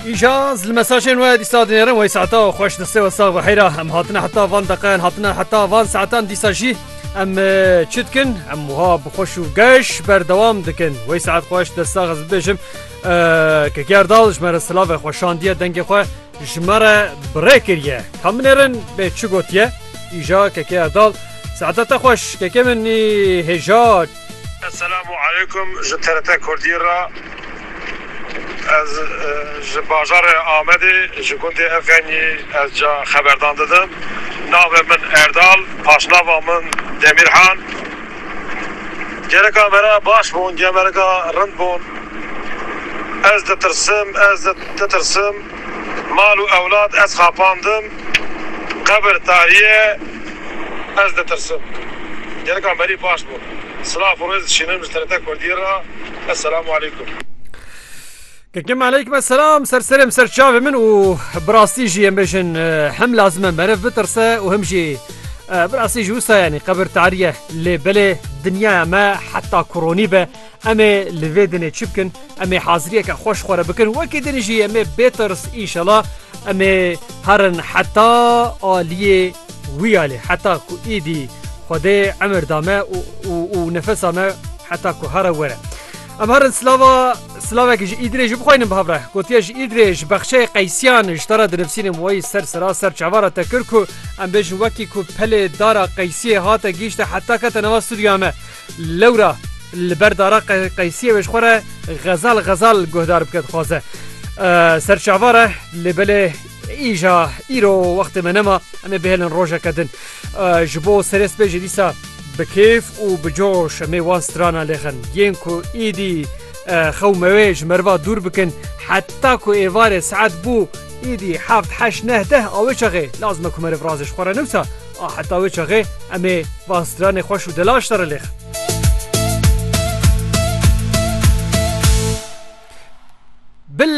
Îja li mesajên we dîsa dinêrin wey saeta xweş distê we sax heyra em hatine heta van deqeyan hatine heta van saetan dîsa jî em çi dikin em wiha bi xweş û geş berdewam dikin wey saet xweş de sax ez bibêjim ke gerdal ji me re silave xweşandiye dengê xwe ji me re birê kiriye ka minêrin bê çi gotiye îja keke erdal saeta te xweş keke min hêja Eselamu aleykum ji TRT Kurdî re ez ji bajarê Amedê ji gundê Efenyî ez ca xeberdan didim navê min Erdal paşnava min Demîrhan gereka me re baş bûn gereka rind bûn ez ditirsim ez ditirsim. Mal û ewlad ez xapandim, qebir tariye ez ditirsim. Gelikan berî baş bûn. Silav û rêz dişînim ji TRT Kurdî re. Eselamu Aleykum. Kekim Aleykum Eselam, ser serê min, ser çavê min û bi rastî jî em bêjin him lazim e meriv bitirse û him jî bi rastî jî wisa yanî qebir tariye lê belê dinyaya me heta kuronî be Em ê li vê dinê çi bikin? Em ê haziriyeke xweş xwe re bikin. Wekî din jî em ê bêtirs înşela em ê herin heta aliyê wiyalê heta ku îdî Xwedê emir da me û nefesa me heta ku here were. Em herin silava silavekî ji îdirê jî bixwaynin bi hevre. Gotiya ji îdirê ji bexçeyê qeysiyan ji te re dinivîsînim wayî ser sira ser çava re te kir ku em bêjin wekî ku pelê dara qeysiyê hate gihîşte heta kete nava stûdyoya me. Lewra li ber dara qeysiyê wê ji xwe re xezal xezal guhdar bike dixwaze. Ser çavar e lê belê îja îro wextê me nema em ê bihêlin rojeke din. Ji bo serê spê jî dîsa bi kêf û bi coş em ê wan strana lêxin. Yên ku îdî xew mewê ji meriva dûr bikin heta ku êvarê saet bû îdî heft heşt neh deh a wê çaxê lazim e ku meriv razê ji xwe re newsa A heta wê çaxê em ê van stranê xweş û delaş serre lêxin. Billa.